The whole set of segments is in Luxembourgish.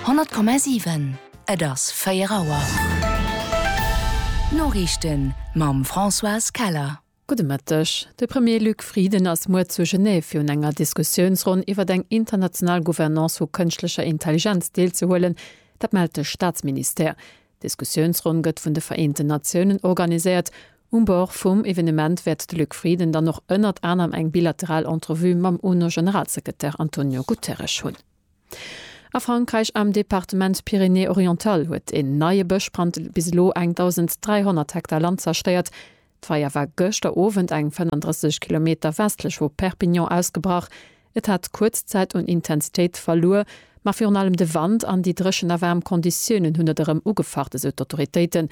100,7 Et ass 4 Auer. D'Noriichten mam Françoise Keller. Gudde Mëtteg. De Premier Luc Frieden ass muer zu Genève fir un enger Diskussiounsronn iwwert eng international Gouvernance vu kënschtlecher Intelligenz deelzehuelen. Dat mellt de Staatsministère. D'Diskussiounsronn gëtt vun de Vereenten Natiounen organiséiert. Um Bord vum Evenement wäert de Luc Frieden dann och ënnert anerem eng bilateral Entrevue mam UNO-Generalsekretär Antonio Guterres hunn. A Frankräich am Departement Pyrénées-Orientales huet en neie Bëschbrand bis elo eng 1.300 Hektar Land zerstéiert. D'Feier war gëschter Owend eng 35 Kilometer westlech vu Perpignan ausgebrach. Et hat kuerz Zäit un Intensitéit verluer, ma virun allem de Wand an déi dréchen a waarm Konditiounen hunn et erëm ugefacht, esou d'Autoritéiten.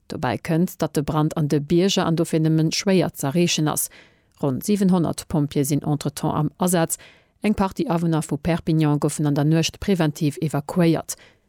Dobäi kënnt, datt de Brand an de Bierger an dofir nëmmen schwéier z'erreechen ass. Ronn 700 Pompjeeë sinn entretemps am Asaz. Eng Partie Awunner vu Perpignan goufen an der Nuecht preventiv evakuéiert.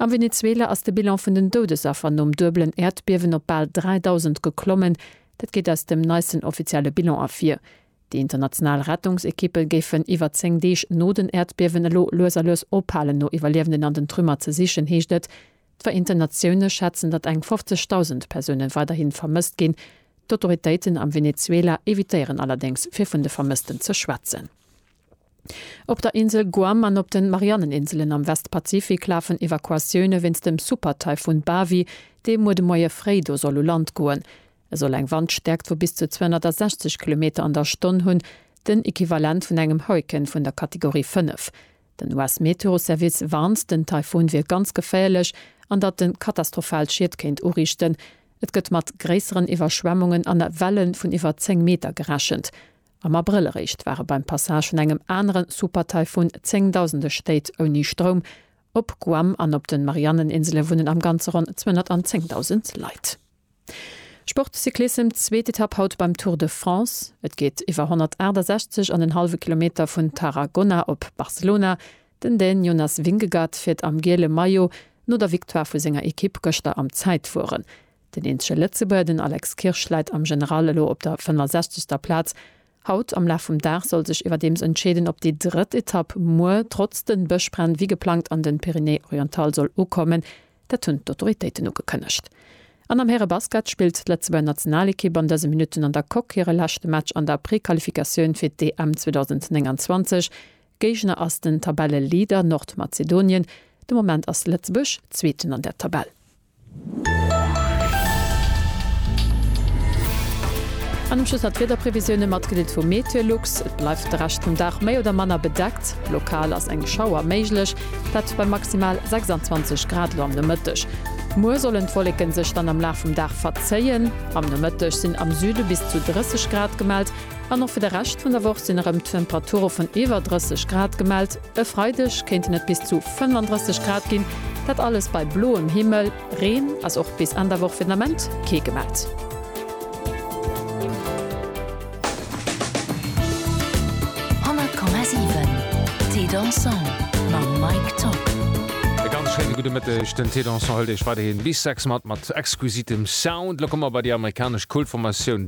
Am Venezuela ass de Bilan vun den Doudesaffer nom duebelen Äerdbiewen op bal 3.000 geklommen. Dat geet aus dem neisten offizielle Bilan ervir. Déi international Rettungsekippe géifen iwwer 10 Deeg no den Äerdbiewen elo lues a lues ophalen no Iwwerliewenden an den Trümmer ze sichen, heescht et. D'Vereenten Natioune schätzen, datt eng 50.000 Persoune weiderhi vermësst ginn. D'Autoritéiten am Venezuela evitéieren allerdéngs fir vun de Vermëssten ze schwätzen. Op der Insel Guam an op den Marianneninselen am Westpazifik lafen Evakuatioune wéinst dem Supertaifun Bavi, dee muer de Moie fréi do soll u Land goen. E soll eng Wandstäerkt vu bis zu 260 Kilometer an der Stonn hunn, den Equivalent vun engem Hurrikan vun der Kategorie 5. Den US-Meteoservice warnt, den Taifun wier ganz geféierlech an datt en katastrophal Schied kéint uriichten. Et gëtt mat gréisseren Iwwerschwemmungen an Welle vun iwwer 10 Meter gerechent. Am Abrëll eréischt ware beim Passage vun engem anere Supertaifun zéngdausende Stéit ouni Stroum. Op Guam an op de Marianneninsele wunnen am Ganze ronn 210.000 Leit. Sport, Cyclissem, Zweet Etapp haut beim Tour de France. Et geet iwwer 168 an en hallwe Kilometer vun Tarragona op Barcelona. Den Dän Jonas Vingegaard fiert am giele Maillot no der Victoire vu senger Ekipp gëschter am Zäitfueren. Den eenzege Lëtzebuerger, den Alex Kirsch, läit am General elo op der 65. Plaz. Haut am Laf vum Dag soll sech iwwerdeems entscheeden, ob déi drëtt Etapp muer trotz den Bëschbränn wéi geplangt an den Pyrénées-Orientales soll ukommen. Dat hunn d'Autoritéiten ugekënnegt. An am Härebasket spillt d'Lëtzebuerger Nationalekipp an dëse Minutten an der Coque hire leschte Match an der Prequalifikatioun fir d'EM 2029. Géigner ass den Tabelleleader Nordmazedonien. De Moment ass Lëtzebuerg Zweeten an der Tabell. An um Schluss nach d'Wiederprevisioune mat Kredit vu Meteolux. Et bleift de Rescht vum Dag méi oder manner bedeckt. Lokal ass eng Schauer méiglech, dat bei maximal 26 Grad elo am Nomëtteg. Muer sollen d'Wolleke sech dann am Laf vum Dag verzéien. Am Nomëtteg sinn am Süde bis zu 30 Grad gemellt. An och fir de Rescht vun der Woch sinn erëm Temperature vun iwwer 30 Grad gemellt. E Freideg kéinten et bis zu 35 Grad ginn, dat alles bei bloem Himmel. Reen ass och bis Enn der Woch fir den Ament kee gemellt. E ganz schéine gudde Mëtteg. Den Thé Dansant hëlt Iech weiderhi bis 6 mat, mat exquisitem Sound. Elo komme mer bei déi amerikanesch Kult-Formatioun